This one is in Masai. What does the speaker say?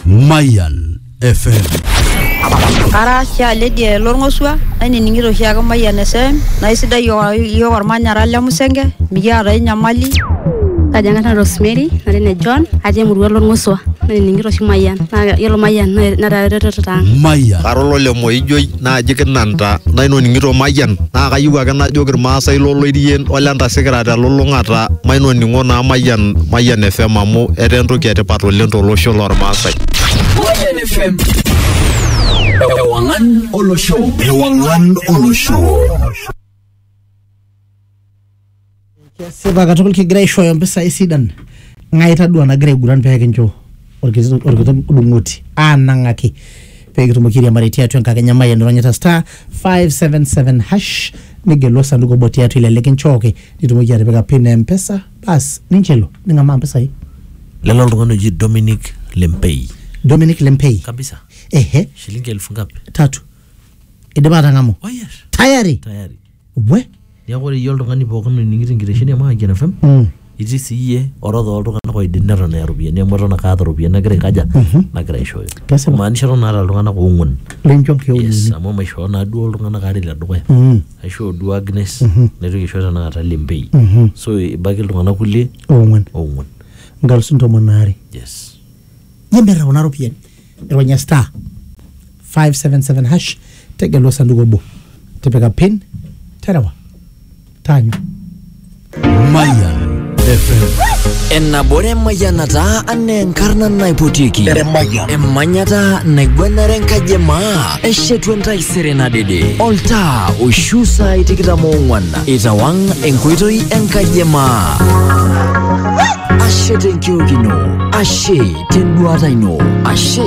Mayan FM. Ara Shia Lydia Lorng'osua, nainining'ito oshi ake Mayian FM, naa isidai iyiook iyiook olmanyara le Musenge, mikiata ai nyamali. Kaji ang'ata Rosemary, nara ene John, atii emurua Lorng'osua, nainining'ito oshi Mayian. Naa yiolo Mayian netaa eretoto ang'. Mayan. Kara olole Moijoi, naaji kinanta nainoning'ito mayian naa kayieu ake najoki irmaasai loloirien ole ntasikira telulung'ata mainoning'o naa mayian mayian fm amu etaa entoki etipat oleng tolosho lormaasai Mayian FM. Ewangan Olosho. Ewangan Olosho. Kesipa katukul kigira aishooyo mpisai sidan. Ng'ae itadua nagira aiguran pee kincho orkiti orkiti dung'oti aanang'aki pee kitumoki airiamari tiatua enkakenya Mayian ironyita star 577 hash nigelu osanduku obo tiatua ile likinchooki nitumoki atipika pin e M-pesa bas ninche elo ning'amaa mpisai. lelo oltung'ani oji Dominic Lempei Dominic Lempei. kabisa Ehe, shilingi elfu ngapi tatu. Idipa atang'amu. oh yes Tayari. tayari we Neeku ore iyie oltung'ani pookin oning'ito enkitesheni e Mayian FM Mm. itii sii iyie orodha oltung'anak oidim neton eya iropiyiani amu eton ake aata iropiyiani nagira aikaja nagira aishooyo. Kesipa. Imaanisha eton aata iltung'anak oong'uan. lincho Yes, nkeonini amu maishoo naa duo iltung'anak aare le dukuya. Mm. Aishoo duo Agnes naitoki aisho tenakata Lembei. Mhm. So ebaiki iltung'anak kulie oong'uan oong'uan. nkalusuni tomon aare Yes. yemerra kuna ropiyiani ronya star 577 hash tegela osanduku obo tipika pin terewa taanyu Mayan FM. Enabore mayanata ane enkarna naipotiki. Emanyata naigwenare enkaji emaa. Eshetu entaisere nadede. Oltaa oishu saai tikitam oong'wan. Itawang enkoitoi enkaji emaa. Ashe tenkiok ino. Ashe tenduata ino. Ashe